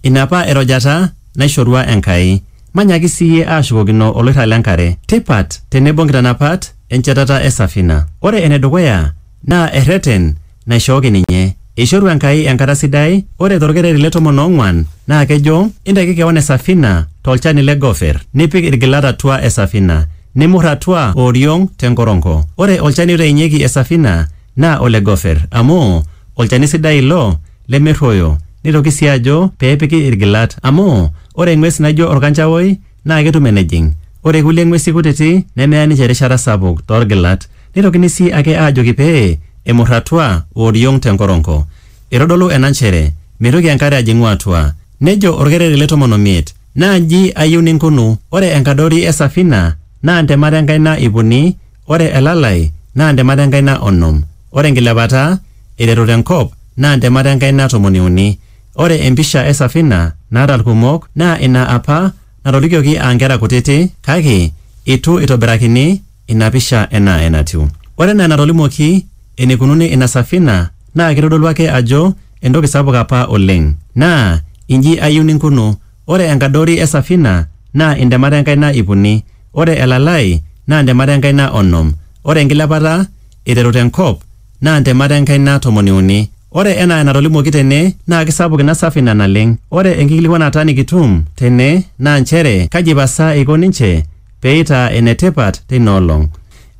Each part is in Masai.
Ina apa erojata naishorua Enkai. Manyaki sii iyie ashukokino oloirrag le nkare. Tipat tenebo nkitanapat enchetata e safina. Ore ene dukuya naa erreten naishooki ninye. Eishoru Enkai enkata sidai, ore to lkereri le tomon oong'uan naa kejo, Intaki kewan e safina to lchani le gofer, nipik ilgilat atua e safina, nimur atua o oriong te nkoronko. Ore olchani oitainyeki e safina naa ole gofer, amu olchani sidai ilo lemerruoyo neitoki sii ajo pee epiki ilgilat amu ore eng'ues naijo olkanchaoi naa ketum enejing ore kulie ng'uesi kutiti nemeya ninche erishata sapuk too lgilat. Neitokini sii ake aajoki pee emur atua o oriong te nkoronko. Eitodolu ena nchere meitoki enkare ajing'u atua. Nejo olkereri le tomon o miet, Naa nji ayieu ninkunu, ore enkadori e safina naa ntemat e nkaina ipuni, Ore elalai naa ntemat enkaina onom, ore enkilepata eiteru te nkop naa ntemat enkaina tomoni uni. Ore empisha e safina naata ilkumok naa ina apa natolikioki aa nkera kutiti kake eitu eitobirakini ina pisha enaa enatiu. Ore enaa enatolimuoki eneikununo ina safina naa keitodolu ake ajo entoki sapuk apa oleng. Naa inji ayieu ninkunu, ore enkadori e safina naa intemat enkaina ip uni, Ore elalai naa ntemat e nkaina onom, ore enkilepata eiteru te nkop naa ntemat e nkaina tomoni uni. Ore enaa enatolimuoki tene naa keisapuk ina safina naleng. Ore enkikilikuanata nikitum tene naa nchere kaji pasa eiko ninche pee eitaa ene tipat teina olong.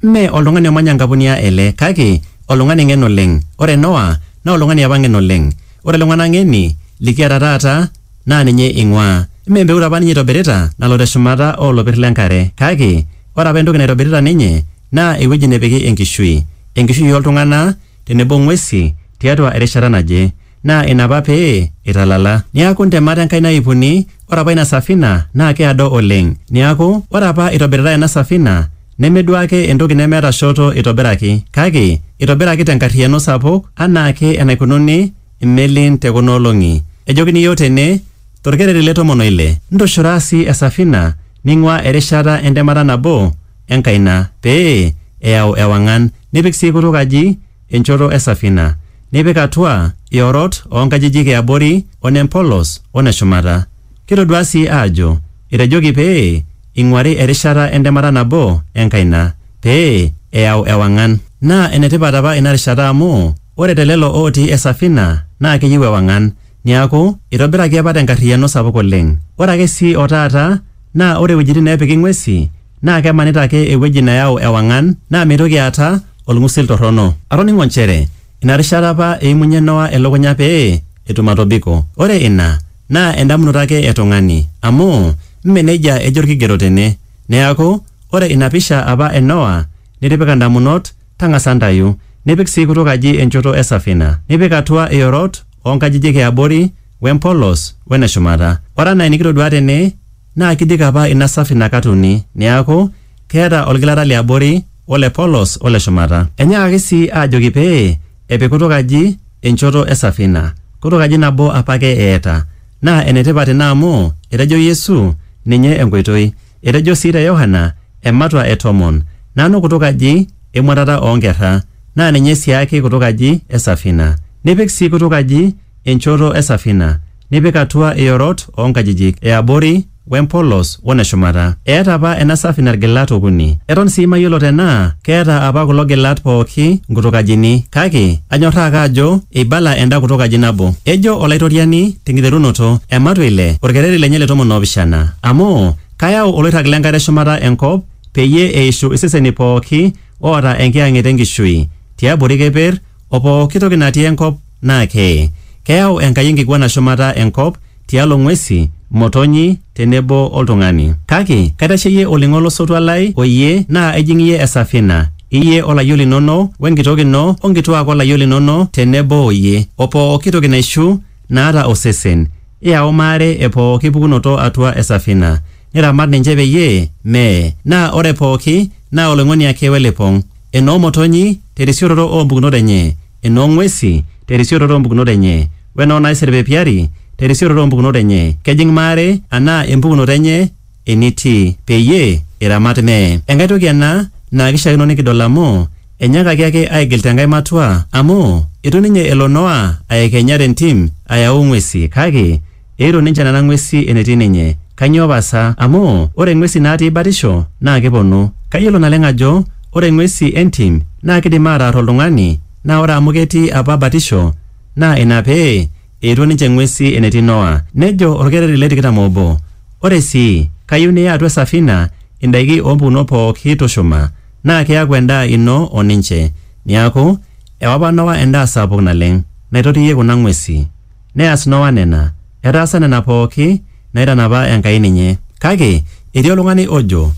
Mme oltung'ani omanya Nkapunia ele kake oltung'ani ng'en oleng. Ore Noa naa oltung'ani apa ng'en oleng. Ore iltung'ana ng'eni likiata taata, naa ninye eing'uaa. Mme empeut apa ninye eitobirita nalo te shumata oo lopir le nkare, kake ore apa entoki naitobirita ninye naa ewueji nepiki enkishui, enkishui oo ltung'ana tenebo ng'uesi tiatua erishata naje. Naa ina apa pee eitalala. Niaku ntemat Enkai naipuni, ore apa ina safina naa keado oleng. Niaku ore apa eitobiritai ena safina neme duo ake entoki nemeeta shoto eitobiraki, kake eitobiraki te nkarriyiano sapuk anaa ake enaikununo imelin te kuna olong'i. Ejokini iyiook tene, tolkereri le tomon o ile, ntushura sii esafina ning'uaa erishata entemata nabo e nkaina pee eyau ewang'an, nipik sii kutuk aji enchoto e safina, nipik atua iorot oo nkajijik e abori o ne mpolos o ne shumata. Kitoduaa sii aajo etejoki pee ing'uari erishata entemata nabo e nkaina pee eyau ewang'an. Naa ene tipat apa ina rishata amu. Ore te lelo ootii esafina naa keyieu ewang'an. Niaku, eitobiraki apa tenkarriyiano sapuk oleng. Ore ake sii o taata naa ore wuejitin neepiki ng'uesi naa kemanita ake ewueji neyau ewang'an naa meitoki aata olng'usil torrono. Atoning'o nchere ina rishata apa eimunyie Noa elukunya pee etum atobiko. Ore ina naa endamunoto ake e tung'ani amu mme neijia ejo olkigerot tene. Neaku, ore ina pisha apa e Noa nitipika ndamunot Tang'asa ntayu, nipik sii kutuk aji enchoto e safina, nipik atua iorot oo nkajijik e abori, we mpolos, we ne shumata. Ore anaa enikitoduaa tene, naa kidiki apa ina safina kat uni, neaku, keeta olgilata li abori, o le polos, o le shumata. Enyaakaki sii aajoki pee epik kutuk aji enchoto e safina. Kutuk aji nabo apake eeta. Naa ene tipat ina amu etejo Yesu ninye enkoitoi. Etejo sii te Yohana ematua e tomon, Nanu kutuk aji emuatata oo nkerra, naa ninye siaake kutuk aji e safina. Nipik sii kutuk aji enchoto e safina, nipik atua iorot oo nkajijik e abori we mpolos wo ne shumata. Eeta apa ena safina ilgilat okuni. Eton sii mayiolo tenaa keeta apa kulo gilat pooki nkutuk ajini, kake anyorraa ake ajo eibala enda kutuk aji nabo. Ejo Olaitoriani tenkiterunoto, ematua ile, olkereri lenye le tomon o pishana. Amu, kayau oloirrag le nkare shumata enkop, peyie eishu iseseni pooki oata enkiyang'et e nkishui, tiabori keper, o pooki toki natii enkop naa keye. Keyau Enkai enkiguana shumata enkop, tialo ng'uesi, motonyi, te nebo oltung'ani. Kake kaitasheyie olning'o lo sotua lai o iyie, naa ijing iyie esafina, iyie o layiok linono, we nkitok ino, o nkituaak o layiok linono te nebo o iyie, o pooki toki naishu naata osesen, iyau maare e pooki pukunoto atua esafina, niramat ninche peyie mee, naa ore pooki naa oloing'oni ake we lipong, enoo motonyi, te risioroto oo mpukunot enye. enoo ng'uesi te risioroto oo mpukunot enye, o enoo naiserpepiari te risioroto oo mpukunot enye, kejing' maare anaa empukunoto enye enitii, peyie iramat mee. Enkae toki ena naa keishiakino nikidol amu enyaakaki ake aigil te nkae matua, amu eitu ninye elo Noa aekenya te ntim ayau ng'uesi, kake Eiro ninche nena ng'uesi enetii ninye. Kainyoo pasa? Amu, ore ing'uesi naatii batisho naa keponu. Kayiolo naleng ajo ore ing'uesi entim naa keidim aataar oltung'ani naa ore amu ketii apa batisho naa ina pee eetuo ninche ing'uesi enetii Noa. Nejo olkereri le tikitam oobo, Ore sii, kayieu niya atua esafina indaiki oo mpukunot pooki tushuma naa keaku endaa ino o ninche. Neaku, ewa apa Noa endaa sapuk naleng naitotiyie kuna ng'uesi. Neas Noa nena. Etaasa nena pooki naaitanapa Enkai ninye. Kake etii oltung'ani ojo,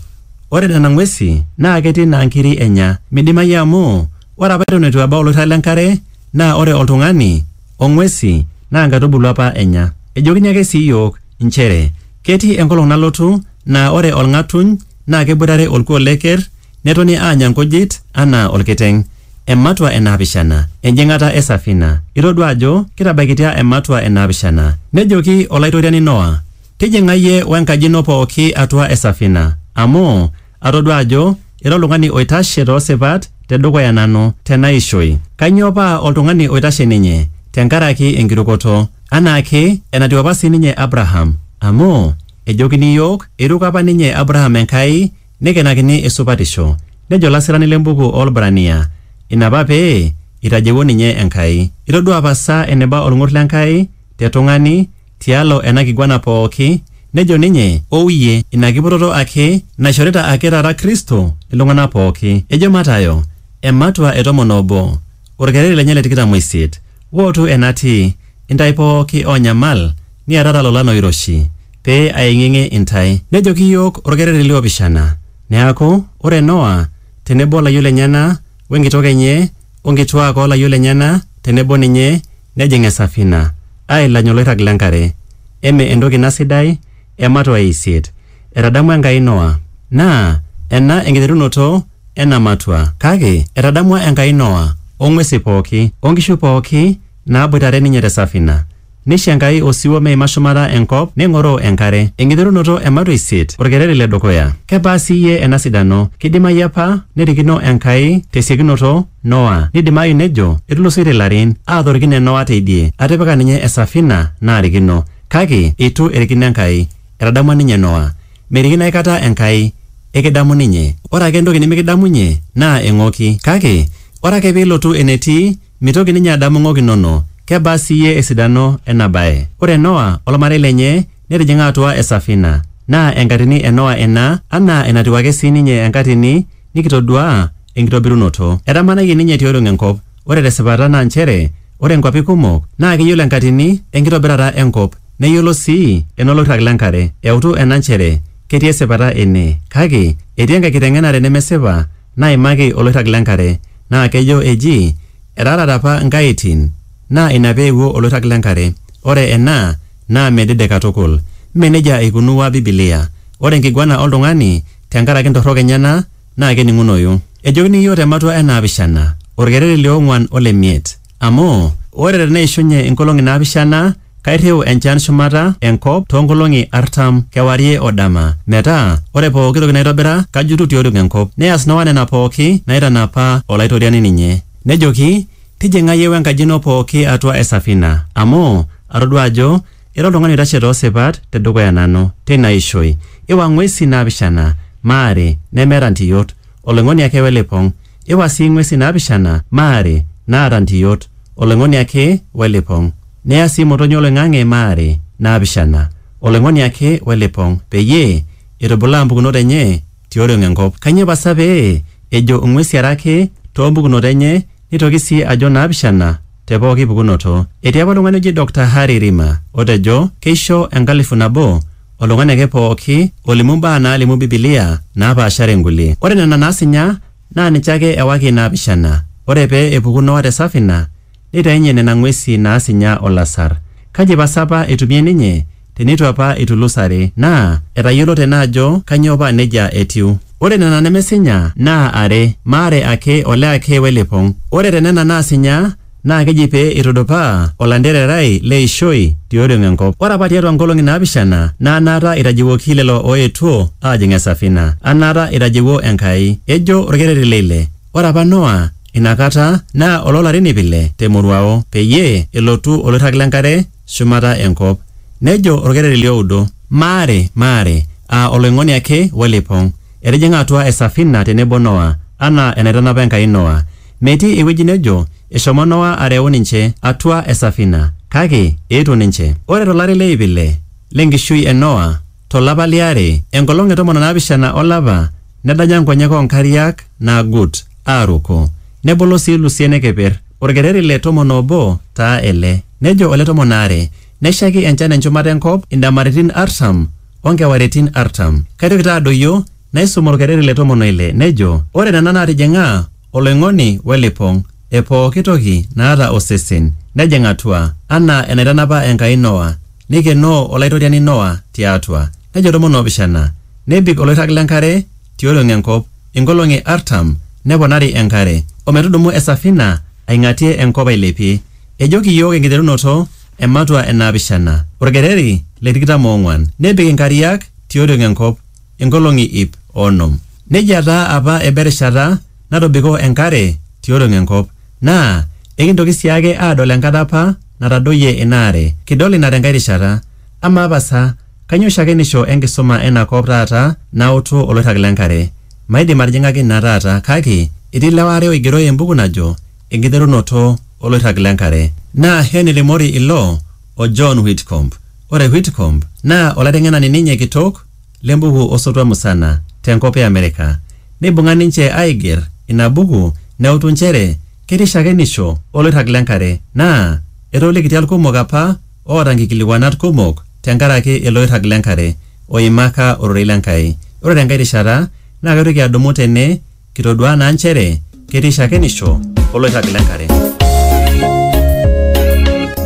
Ore nena ng'uesi naa ketii naa nkiri enya. Meidimayu amu ore apa eton eitu ebau oloirrag le nkare naa ore oltung'ani o ng'uesi naa nkaitubulu apa enya. Ejokini ake sii iyiook inchere ketii enkolong nalotu naa ore olng'atuny naa keboitare olkuoo le ker Netoni aanya nkujit anaa olkiteng. Ematua e naapishana. Enjing'ata e safina. Itodua ajo kitabaikitia ematua e naapishana. Nejoki Olaitoriani Noa, Tijing'a iyie o enkaji ino pooki atua e safina, amu atodua ajo ira oltung'ani oitashe too sipat te dukuya nanu te naishoi. Kainyoo paa oltung'ani oitashe ninye? Te nkaraki enkirukoto. Anaa ake enatiu apa sii ninye Abraham. Amu, ejokini iyiook, eiruko apa ninye Abraham Enkai Neikenakini esupatisho. Nejo olasirani le mbuku oo Lbrania, Ina apa pee eitajewuo ninye Enkai. Itodua apa sa eneba olng'ur le Nkai te tung'ani tialo ena kiguana pooki? Nejo ninye, Ou iyie, ina kiputoto ake naishorita ake taata Kristo iltung'ana pooki. Ejo Matayo, ematua e tomon oobo. Olkereri lenye le tikitam o isiet, wootu enatii, intae pooki oonyamal niatata lolan oiroshi, pee aeng'ieng'ie intae. Nejoki iyiook olkereri li opishana, Neaku, ore Noa te nebo o layiok lenyena we nkitok enye o nkituaak oo layiok lenyena te nebo ninye nejing esafina, aailany oloirrag le nkare. Eme entoki ina sidai? Ematua e isiet. Etadamua Enkai Noa. Naa ena enkiterunoto ena matua. Kake etadamua Enkai Noa, o ng'uesi pooki, o nkishu pooki naaboitare ninye te safina. Neisho Enkai osiwuo meima shumata enkop neng'oroo enkare. Enkiterunoto e matua isiet, olkereri le dukuya. Kebaa sii iyie ena sidano! Keidimayu apa nerikino Enkai te siokinoto Noa. Neidimayu nejo, Etulusoitie ilarin, aatorikine Noa teidie, atipika ninye esafina, naarikino. Kake eitu erikino Enkai. Etadamua ninye Noa. Merikino aikata Enkai, ekidamu ninye. Ore ake entoki nimikidamunye naa eng'oki. Kake, ore ake pee ilotu enetii, mitoki ninye adamu ng'ok inono. Kebaa sii iyie esidano ena bae! Ore Noa o lmarei lenye netijing'a atua esafina. Naa enkatini e Noa ina, anaa enatiu ake sii ninye enkatini nikitoduaa enkitobirunoto. Etamanayie ninye tioriong enkop. Ore tesipata naa nchere ore nkuapi kumok naa keyiolo enkatini enkitobirata enkop neyiolo sii enoloirrag lenkare. Eutu ena nchere ketii esipata ene. Kake etii enkae kiteng'enare nemesipa naimaki oloirrag lenkare naa kejo eji etaarate apa nkaitin naa ina pee eewuo oloirrag lenkare. Ore ena naa medede katukul. Mme neijia eikunua Bibilia. Ore enkiguana oltung'ani tenkaraki ntorrok enyena naa kening'unoyu. Ejokini iyiook te matua e naapishana, olkereri li ong'uan o le miet. Amu, ore te neishunye inkolong'i naapishana, kairriu enchan shumata e nkop too nkolong'i artam, kewarie o dama, metaa ore pooki toki naitobira kajutu ti oriong e nkop. Neas Noa nena pooki naitanapa Olaitoriani ninye. Nejoki, Tijing'a iyie we nkaji ino pooki atua e safina, amu atodua ajo Ira oltung'ani oitashe too sipat te dukuya nanu, teina ishoi, iwa ng'uesi naapishana, maare, nemeeta ntiyot, oloing'oni ake we lipong', iwa sii ng'uesi naapishana, maare, naata ntiyot, oloing'oni ake we lipong', niya sii motonyi o loing'ang'e, maare, naapishana, oloing'oni ake we lipong', peyie eitubulaa mpukunot enye ti oriong e nkop. Kainyoo pasa pee ejo ng'uesi are ake too mpukunot enye neitoki sii ajo naapishana? te pooki pukunoto. Etii apa oltung'ani oji Dokta Harry Rima otejo keisho enkalifu nabo oltung'ani ake pooki olimu imbaa naalimu Bibilia naapaashare inkulie. Ore nena naasinya naa ninche ake ewaki inaapishana. Ore pee epuku Noa te safina, neitainye nena ng'uesi naasinya o lasar. Kaji pasa apa eitumie ninye? Te neitu apa eitulusare, naa etayiolo tena ajo kainyoo paa neijia etiu. Ore nena nemesinya naa are, maare ake, ole ake we lipong. Ore te nena naasinya naa keji pee eitudupaa olantererai le ishoi ti oriong e nkop. Ore apa tiatua nkolong'i naapishana naa anaata eitajeuoki lelo ooetuo aajing esafina, anaata eitajeuo Enkai. Ejo olkereri le ile, Ore apa Noa ina kata naa oloo larin iip ile te moruao, peyie elotu oloirrag le nkare, shumata enkop. Nejo olkereri li oudo, Maare! Maare! Aa oloing'oni ake we lipong'. Etijing'a atua e safina te nebo Noa, anaa enaitanapa Enkai Noa. Metii ewueji nejo eshomo Noa areu ninche atua e safina, kake eetuo ninche. Ore to lari le iip ile le nkishui e Noa, tolapa liare, enkolong e tomon o naapishana olapa, nedanya nkonyek oo nkariak naagut aaruko, nebolo sii ilusien e keper. Olkereri le tomon oobo taa ele. Nejo ole tomon aare, Neshaiki enchan enchumata e nkop indamaritin artam o nkewaritin artam. Kaitoki taa adoyio naisum olkereri le tomon o ile, nejo, Ore nena naatijing'a oloing'oni we lipong e pooki toki naata osesen, nejing atua, anaa enaitanapa Enkai Noa, Neikenoo Olaitoriani Noa ti atua, nejo tomon o pishana, nebik oloirrag le nkare tioriong e nkop inkolong'i artam, neponari e nkare, o metudumu e safina aing'atie e nkop ailepie. Ejoki iyiook enkiterunoto e matua e naapishana, olkereri le tikitam o ong'uan, nebik inkariak tioriong e nkop inkolong'i iip o onom. Neijia taa apa eba erishata natobiko enkare tiolong enkop, naa ekintoki sii ake aadol enkata apa natadoyie ina are. Kidol ina tenkae rishata. Amaa pasa, kainyoo shakenisho enkisuma ena kop taata nautu oloirrag le nkare? Maidim atijing'aki ina taata kake etii ilewa aare oigero embuku najo Enkiterunoto Oloirrag le Nkare. Naa Henry Morey ilo o John Whitcomb. Ore Whitcomb naa olaiteng'enani ninye kitok le mbuku o sotua musana te nkop e Amerika. Neibung'a ninche aaiger ina buku neutu nchere ketii shakenisho o loirrag le nkare naa etoolikitia ilkumok apa oota nkikilikuanat kumok te nkaraki ilo oirrag le nkare oimaka ororei le Nkai. Ore te nkae rishata naa kaitoki adumu tene Kitoduaa naa nchere ketii shakenisho oloirrag le nkare.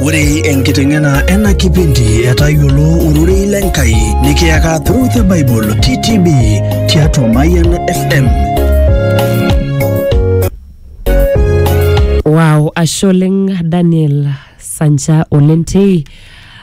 Ore enkiteng'ena ena kipindi e Tayiolo Ororei le Nkai nikiyaka Through the Bible TTB tiatua Mayian FM. Wow, ashe oleng Daniel Sancha Olentei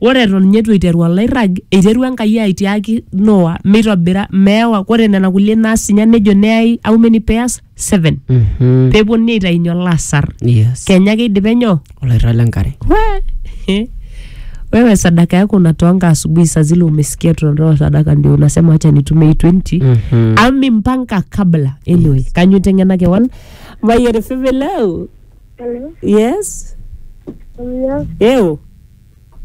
Ore eton ninye eitu eiteru olairrag, eiterua Enkai aitiaki Noa meitobira meewa ore nena kulie naas ninye nejo neyai how many pairs? Seven. Mhm. Pee epuonuni aitainye olasar. Yes. Kenya ake eidipe nyoo? Olairrag le nkare. We- wewe sadaka yako unatoanga asubuhi saa zile umesikia tunatoa sadaka ndio unasema wacha nitumie hii 20 Mhm. ami mpanga kabla anyway kanyo tengena kewan mayere feve leo Hello. yes Hello. eo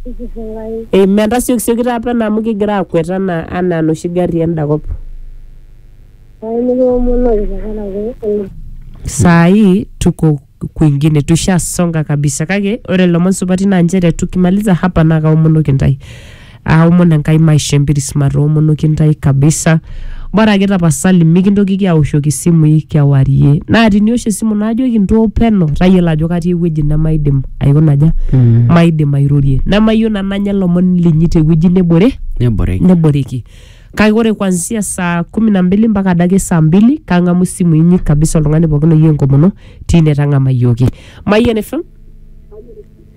Ikifungai. amen tasiokisioki taa pena amu kigira akwet anaa anaa noshi gari enda kop Ai nikiwomonori tenkaraki ena. saa hii tuko kwingine tushasonga kabisa kake ore ilomon supati naa nchere tukimaliza hapa naa kaomonoki ntae aomon enkai maisho empiris matoomonoki ntai kabisa bora ake tapasali mikintokiki aoshoki isimui kewarie naa tiniosh esimu naajoki ntoo peno tayiolo ajo katii ewueji nemaidim aikonaja Mm. maidim airorie nemayieu nanu anya lomon linyi tewueji nebore Neboreki. neboreki kake ore kwanzia saa kumi na mbili mpaka adake saa mbili kang'amu isimu inyi kabisa oltung'ani pookin oyieu enkomono tine tang'amayioki mayian fm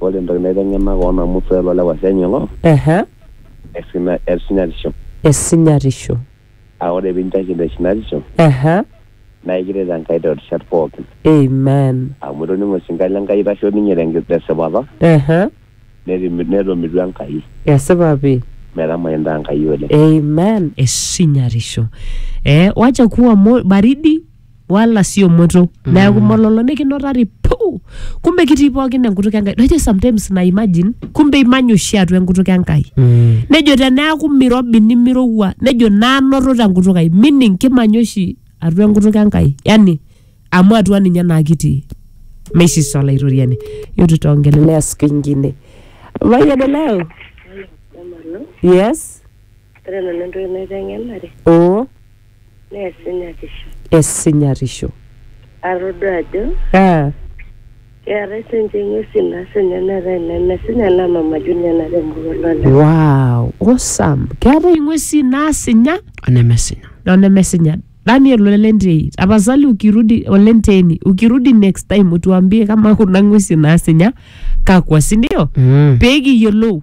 Ore entoki naiteng'ena koon amu swali loo lewa senya ilo. Ehe. Esina esinyatisho. Esinyatisho. Aa ore pinchaki te sinatisho. Ehe. Naa ekiret Enkai too rishat pookin. Amen. Amu itoning'o osinka le Nkai eitasho ninye tenki te sipata. Ehe. Neti netomitu Enkai. Esipa pii. Metamani intaa Enkai oleng. Amen esinyatisho. Ee wacha kuwa mo baridi. wala sio moto neeku mololo nikinotari puu kumbe kitii pookin enkutuk enkai najo sometimes na imagine kumbe imanya oshi atua enkutuk enkai Mm. nejo teneaku mirobi nimirowua nejo nanoto tenkutuk ai meaning kimanya oshi atua enkutuk enkai yani amu atua ninye naa kitii meisisa olaitoriani yotu tongelelea siku ingine mayiani leo yes Ore nanu entoki naiteng'enare oo neesinyatisho. Esinyatisho. Atodua ajo. Ah. Keetae sinche ng'uesi nasinya neetae nemesinya naa Mama Junior natemoruo lole. Wow, awesome. Keetae ing'uesi naasinya Onemesinya. onemesinya. Daniel Olentei, tapasali ukirudi Olenteni, ukirudi next time utuambie kama kuna ng'uesi naasinya kakwa, si ndio? Mm. Pee kiyiolou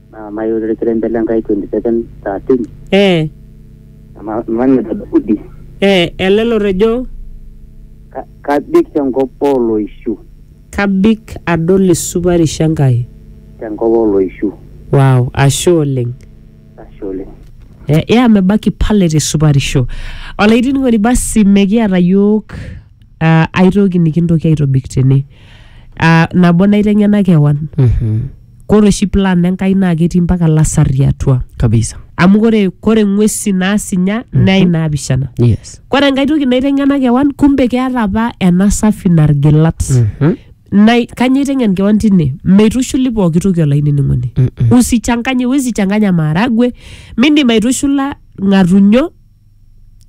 naa mayieu ilkirenke le Nkai 27:13 Ee, ama- manita Daudi ee, ele lotejo ka- kabik tenkop ooloishu kabik adol esupatisho Enkai. tenkop ooloishu Wow, ashe oleng. ashe oleng Eh, ya mebaki pale te supatisho. Olainining'oni basi mekiata yiok Ah, aitoki nikintoki aitobik tene Ah, nabo naiteng'ena kewan Mhm. kore oshi plan enkai naa ketii mpaka lasarri atua kabisa amu kore kore ng'uesi naasinya naa inaapishana yes kore enkae toki naiteng'ena kewan kumbe keata apa ena safi nargilat Mhm. Nai- kanyoo iteng'en kewan tine meitushuli pooki toki olainining'oni Mm-mm. usichanganye wesichanganya maharagwe mindim aitushula ng'atunyo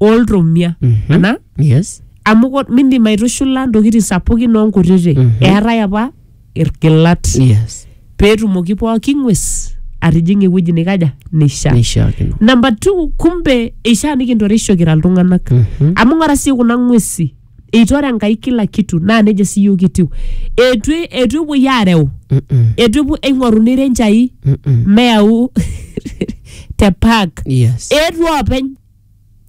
oltomia Mhm. ana yes amu ko- mindim aitushula ntokitin sapukin onkutiti Mhm. eetae apa irgilat yes peetumoki pooki ng'ues atijing'a ewueji nikaja nisha neishiakino namba two kumbe eishaa nikintoreisho kira iltung'anak Mhm. amu ng'ora sii kuna ng'uesi eitu ore enkai kila kitu naa nejo sii yiok kitiu eitu eitu epuoi aareu eitu epuo eing'oruni renchai meyau te park yes eetuo oopeny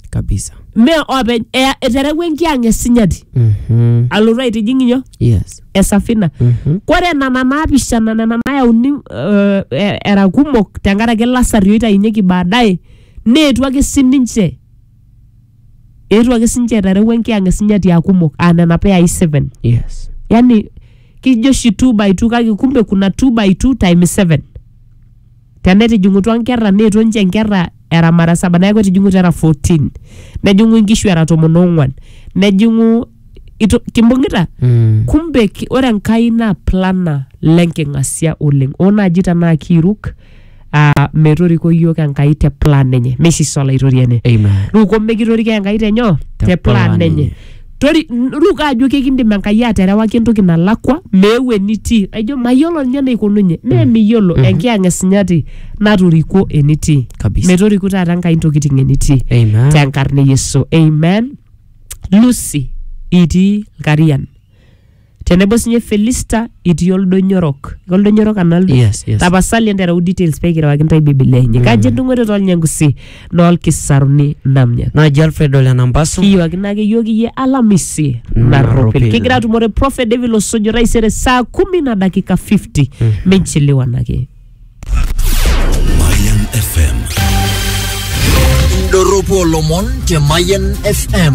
kabisa mee oopeny Ea- eterewua enkiang esinyati Mhm. alotu aitijing inyo yes esafina Mhm. kore nana naapishana nena nayauni eh, eh, era kumok tenkaraki lasari oitainyeki baadaye neetu ake sininche eetuo ake sinche eterewua enkiyang e sinyati aa kumok aa nena peyai 7 yes yani kijo oshi 2 by 2 kake kumbe kuna 2 by 2 times 7 tenetijing'utua nkerra neetuo ninche nkerra era mara saba neeku etijing'utua era 14 nejing'u inkishu era tomon oong'wan nejing'u ito- kimbung'ita mm. kumbe ki- ore enkai naa plana lenking'asia oleng oo naaji tenaa kiiruk ah, metoriko iyiook Enkai te plan enye meisisa olaitoriani Amen. ruko mekitoriko Enkai tenyoo Te te plan plan enye enye. Tori, n- ruko ajo kekindim Enkai aterewaki entoki nalakwa meeu enitii aijo mayiolo ninye eneikununye mee miyiolo enkiyang esinyati natorikuo enitii Kabisa. metoriku taata Enkai intokitin enitii Amen. tenkarna e Yesu amen Lucy itii Lkarian tenebo sinye felista itii oldonyo orok oldonyo orok analdo Yes, yes. tapasali entereu details pekirewaki ntae biblia enye kaji edung'ote tolnyangusi noolkisaruni namnya naji alfred ole nambasu kiyiwakino ake yiok iyie alamisi Narropil. narropil kigira atumore prophet david losojo taisere saa kumi na dakika 50 minchiliwanake Mayan FM. Indorropu olomon te Mayan FM.